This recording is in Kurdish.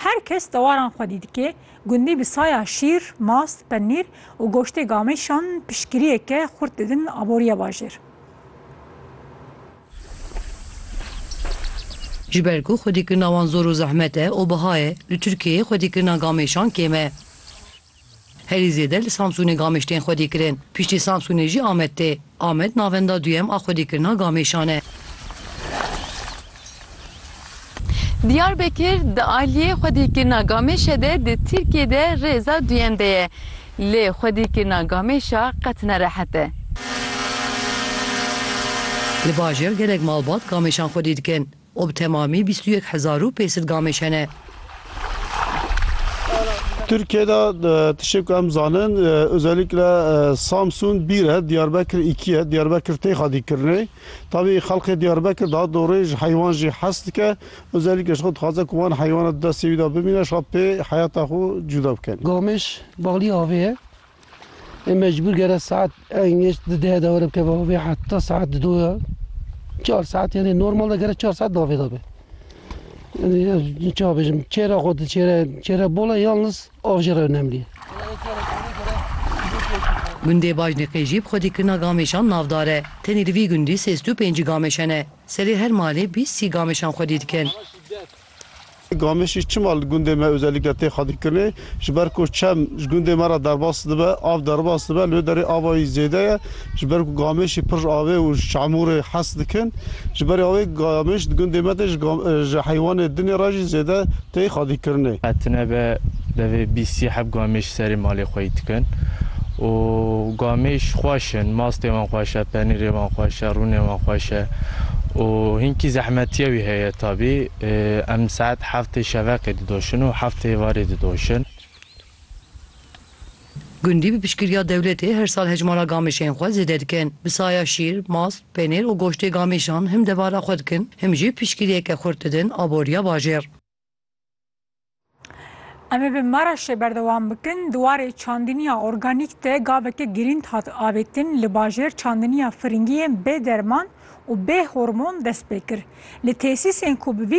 Her kes dewaran xwedî dike, gundî bi saya şîr, mast, penîr û goştê gamêşan piştgiriyeke xurt didin aboriya bajêr. Ji ber ku xwedîkirina wan zor û zehmet e û biha ye, li Tirkiyeyê xwedîkirina gamêşan kêm e. Herî zêde li Samsûnê gamêş tên xwedîkirin. Piştî Samsûnê jî Amed tê. Amed navenda duyem a xwedîkirina gamêşan e. Diyarbekir di aliyê xwedîkirina gamêşe de di Tirkiyê de rêza duyem de ye. Lê xwedîkirina gamêşa qet ne rehet e. Li bajêr gelek malbat gamêşan xwedî dikin. û bi temamî bîst û yek hezar û pênc sed gamêj hene. Tirkiyeyê de tiştê ku em zanin ozeliklê Samsun bîr e, Diyarbekir îkî ye, Diyarbekir tê xwedî kirinê. Tavî xelkê Diyarbekir daha dorê ji heywan jî hez dike, ozeliklê ji xwe dixwaze ku wan heywana di destê wî de bimîne, ji xwe pê heyata xwe cuda bike. Gamêj balî avê ye, Em mecbûr gere saet eng geç di deh de were bikeve avê heta saet di doya. Çar saet yani normal de gere çar saet di avê de be. Yani çawa bêjim çêra xwe di çêre çêre bola yalnız av jî re önemlî ye. Gundê Bajnîqê jî bi xwedî kirina gameşan navdar e. Tenê li vî gundî sêzdû pêncî gameş hene. Serê her malê bîst sî gameşan xwedî dikin. Gamişî çima li gundê me ozelikke tê xwedîkirinê? Ji ber ku çem ji gundê me re derbas dibe, av derbas dibe. Li wê derê ava yî zêde ye. Ji ber ku gamişî pir ji avê û ji çamûrê hez dikin. Ji ber ya wê gamiş di gundê me de ji heywanê dinê re jî zêde tê xwedîkirinê. Tune be Devê bîst sî heb gamêş serê malê xwe yî dikin û gamêş xweş in, mastê wan xweş e, penîrê wan xweş e, rûnê wan xweş e û hinkî zehmetiya wî heye tabî. Em saet heftê şeveqê didoşin û heftê êvarê didoşin. Gundî bi piştgiriya dewletê her sal hejmara gamêşên xwe zêde dikin. Bi saya şîr, mast, penîr û goştê gamêşan him devara xwe dikin him jî piştgiriyeke xurt didin aboriya bajêr. Em ê bi Maraşê berdewam bikin. Di warê çandiniya organîk de gaveke girîng hat avêtin li bajêr çandiniya firingiyên bê derman û bê hormon dest pê kir. Li tesîsên ku bi vî